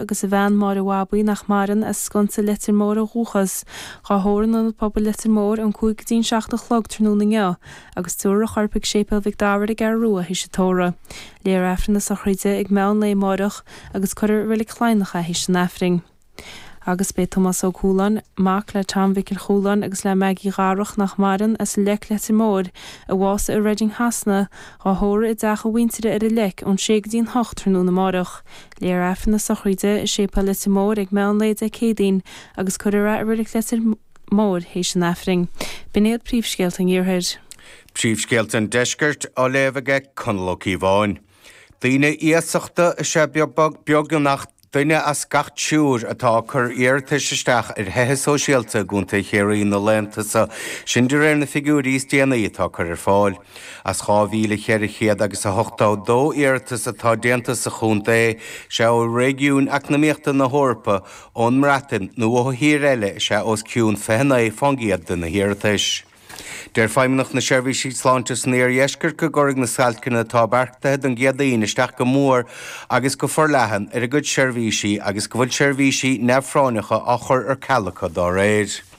agus a bhean Máire Bhabaí, nach maireann, as Sconsa Leitir Móir ó dhúchas. Dhá thórramh in Ionad Pobail Leitir Móir ón 5 go dtí an 7 a chlog tráthnóna inniu agus tiúrfar a chorp ag Séipéal Mhic Dara ar an gCeathrú Rua théis an tórraimh. Léifear Aifreann na sochraide ag meán lae amáireach agus cuirfear i Reilig Chladhnach é théis an Aifrinn. Agus beidh Tomás Óg Chualáin, mac le Tom Mhicil Chualáin agus le Maggie Dharach, nach maireann, as an Leic Leitir Móir, a bhásaigh i Reading Shasana, dhá thórramh i dteach a mhuintire ar an Leic ón 6 go dtí an 8 tráthnóna amáireach. Léifear Aifreann na sochraide i Séipéal Leitir Móir ag meán lae Dé Céadaoin agus cuirfear a luaith i Reilig Leitir Móir théis an aifrinn. B'in iad príomhscéalta an Iarthair. Príomhscéalta an Deiscirt á léamh ag Conall Ó Cíobháin. Daoine iasachta is ea beagnach duine as gach triúr atá ag cur iarratais isteach ar thithe sóisialta i gContae Chiarraí na laethanta so, sin de réir na figiúirí is déanaí atá curtha ar fáil. As 2,400 agus 82 iarratas atá déanta sa chontae, is é ó réigiún eacnamaíochta na hEorpa, ón mBreatain nó ó thír eile is ea os cionn 29% de na hiarratais. Deir Feidhmeannacht na Seirbhísí Sláinte san Iardheisceart go gcuirfidh na stailceanna atá beartaithe don gCéadaoin isteach go mór agus go forleathan ar a gcuid seirbhísí agus go bhfuil seirbhísí neamhphráinneacha á gcur ar ceal acu dá réir.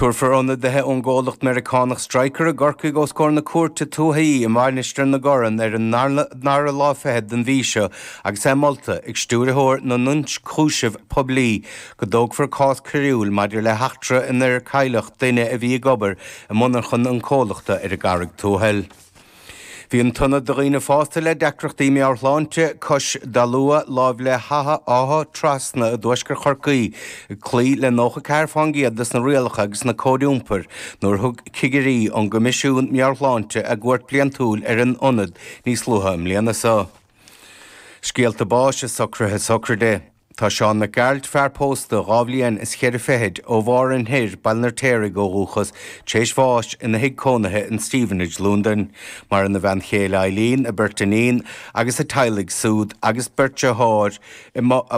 Tabharfar ionadaithe ón gcomhlacht Meiriceánach Stryker i gCorcaigh os comhair na cúirte tuaithe i Mainistir na Corann ar an ndara lá fichead den mhí seo agus é molta ag Stiúrthóir na nIonchúiseamh Poiblí go dtógfar cás coiriúil maidir le heachtra inar cailleadh duine a bhí ag obair i monarchain an chomhlachta ar an gCarraig Tuathail. Bhí an t-ionad do dhaoine fásta le deacrachtaí meabhairshláinte, Cois Dalua, láimh le hÁtha Áth Trasna i dtuaisceart Chorcaí, ag cloí le 94 fén gcéad des na rialacha agus na cóid iompair nuair a thug cigirí ón gCoimisiún Meabhair-Shláinte a gcuairt bliantúil ar an ionad níos luaithe i mbliana. Scéalta báis agus socruithe sochraide. Tá Seán Mac Gearailt, fear pósta dhá bhliain is cheithre fichid, ó Mhárthain Thoir, Baile an Fheirtéaraigh ó dhúchas, tar éis bháis ina thigh cónaithe in Stevenage, Londain. Maireann a bhean chéile Eileen, a beirt iníon agus a dteaghlaigh súd, a bheirt deartháir,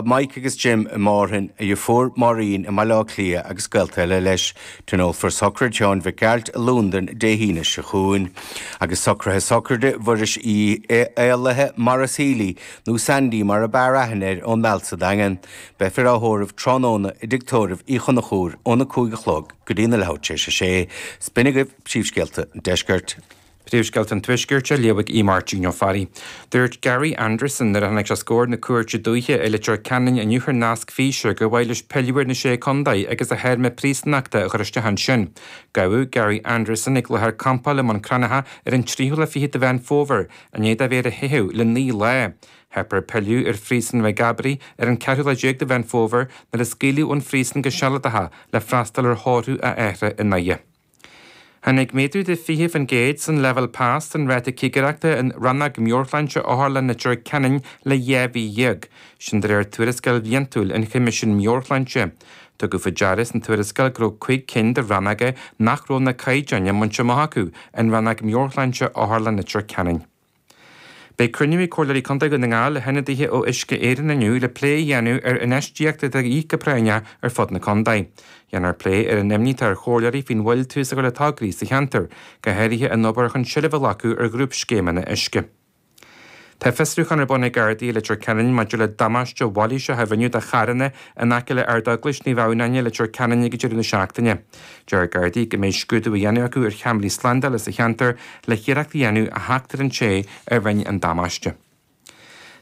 Mike agus Jim i Márthain, a dheirfiúr Máirín i mBaile Átha Cliath agus gaolta eile leis. Tionólfar sochraid Sheáin Mhic Gearailt i Londain Dé hAoine seo chugainn. Agus socruithe sochraide Mhuiris Uí Éalaithe, Maurice Healy, nó Sandy mar ab fhearr aithne air ón Meall sa Daingean. Beifear á thórramh tráthnóna i dTigh Tórraimh Uí Chonchúir óna cúig a chlog go dtí leathuair tar éis a sé. Is b'in agaibh, Príomhscéalta an Deiscirt. Príomhscéalta an Tuaiscirt á léamh ag Máirtín Ó Fearraigh. Dúirt Gary Anderson nuair a tháinig sé os comhair na cúirte dúiche i Leitir Ceanainn inniu thar nasc físe gur mhaith leis pilleadh ar na sé contae agus a théarma príosúnachta a chur isteach ansin. Gabhadh Gary Anderson ag láthair campála i mBun Crannaithe ar an tríú lá fiche de Mheán Fómhair I ndiaidh dó a bheith ar a theitheadh le naoi lá, theip air pilleadh ar Phríosún Mhaigh gCabraí ar an 14 lá de Mheán Fómhair nuair a scaoileadh ón phríosún go sealadach le freastal ar thórramh a athar i nDoire. Tháinig méadú de 20% san leibhéal pas don ráta cigireachta in Rannóg Meabhairshláinte Otharlann Leitir Ceanainn le dhá mhí déag, sin de réir tuarascáil bhliantúil ón Choimisiún Meabhairshláinte. Tugadh faoi deara san tuarascáil go raibh cuig cinn de rannóga nach raibh na caighdeáin bainte amach acu i Rannóg Meabhairshláinte Otharlann Leitir Ceanainn. Beidh cruinniú ag Comhairleoirí Contae Dhún na nGall le hionadaithe ó Uisce Éireann inniu le plé a dhéanamh ar infheistíocht atá de dhíth go práinneach ar fud na contae. Déanfar plé ar an imní atá ar chomhairleoirí faoin mhoill tús á chur le tograí sa cheantar, go háirithe an obair chun seilbh a ghlacadh ar ghrúpscéimeanna uisce. Tá fiosrúchán ar bun ag Gardaí i Leitir Ceanainn maidir le damáiste mailíseach a rinneadh do charranna in aice le Ard-Eaglais Naomh Adhamhnáin i Leitir Ceanainn ag deireadh na seachtaine. Deir Gardaí go mbeidh scrúdú á dhéanamh acu ar cheamaraí slándála sa cheantar le hiarracht a dhéanamh a theacht ar an té a rinne an damáiste.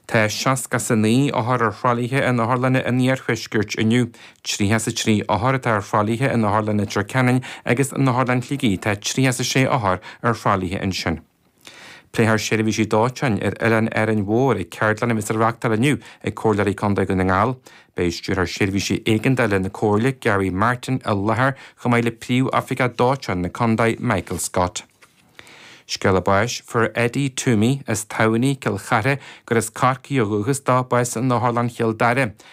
Tá 69 othar ar thralaithe in otharlanna an iarthuaiscirt inniu. 33 othar atá ar thralaithe in Otharlann Leitir Ceanainn agus in Otharlann Shligigh tá 36 othar ar thralaithe ansin. Pléifear seirbhísí dóiteáin ar Oileán Árainn Mhór ag ceardlann a bheas á reáchtáil inniu ag Comhairleoirí Contae Dhún na nGall. Beidh Stiúrthóir Seirbhísí Éigeandála na Comhairle, Gary Martin, i láthair chomh maith le Príomhoifigeach Dóiteáin na Contae, Michael Scott. Scéala báis. Fuair Eddie Toomey as Tamhnaigh, Cill Chartha, gur as Corcaigh ó dhúchas dó, bás in Otharlann Chealla Beaga.